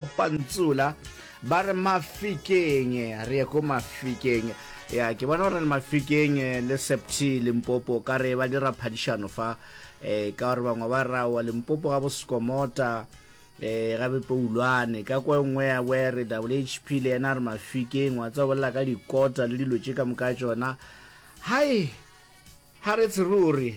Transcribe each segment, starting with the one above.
Pantsula ba re Mafikeng, re ye ko Mafikeng. Ya, ke bona gore le Mafikeng le Septhi Limpopo ka re ba dira phadišano fa eh, ka gore bangwe ba ra wa Limpopo ga Boskomota eh, ga Bepoulwane ka kwa nngwe ya were WHP le yena re Mafikeng wa tsa bolela ka dikota le dilo tše ka moka tsona. Hai, ha re tshe ruri.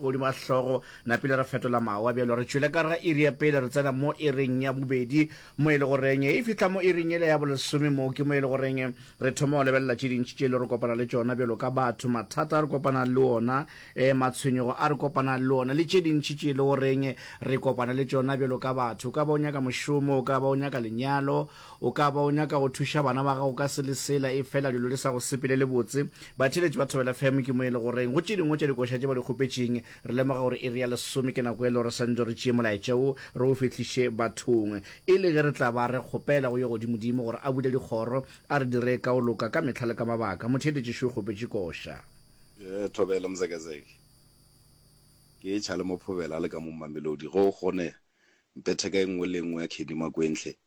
Godimo ga hlogo, napile re fetola mawa bjalo re tšwele ka gare ga iri ya pele, re tsena mo iring ya bobedi, mo e le goreng e fihla mo iring yela ya bolesome. Moo ke mo e le goreng re thoma go lebelela tše dintši tše e le re kopana le tšona bjalo ka batho, mathata a re kopanang le ona, matshwenyego a re kopanang le ona le tše dintši tše e le goreng re kopana le tšona bjalo ka batho. O ka ba o nyaka mošomo, o ka ba o nyaka lenyalo, O ka ba o nyaka go thuša bana ba gago ka se le sela efela dilo di sa go sepelele botse. Batheeletši ba Thobela FM ke mo e le goreng go tše dingwe tša dikoša tše ba di kgopetšeng. Re lemoga gore iri ya lesome ke nako e le gore swantšo re tšee molaetša wo re o fihliše bathong. E le ge re tla ba re kgopela go Yogodimodimo gore a bule dikgoro, a re dire ka go loka ka mehla le ka mabaka. Motheeletši Shu o kgopetše koša. Ee, Thobela Mzekezeke. Ke e-tšha le mo Phobela le ka mo Mamelodi. Ge o kgone, mphe theka e nngwe le e nngwe ya Khedi Makwenhle.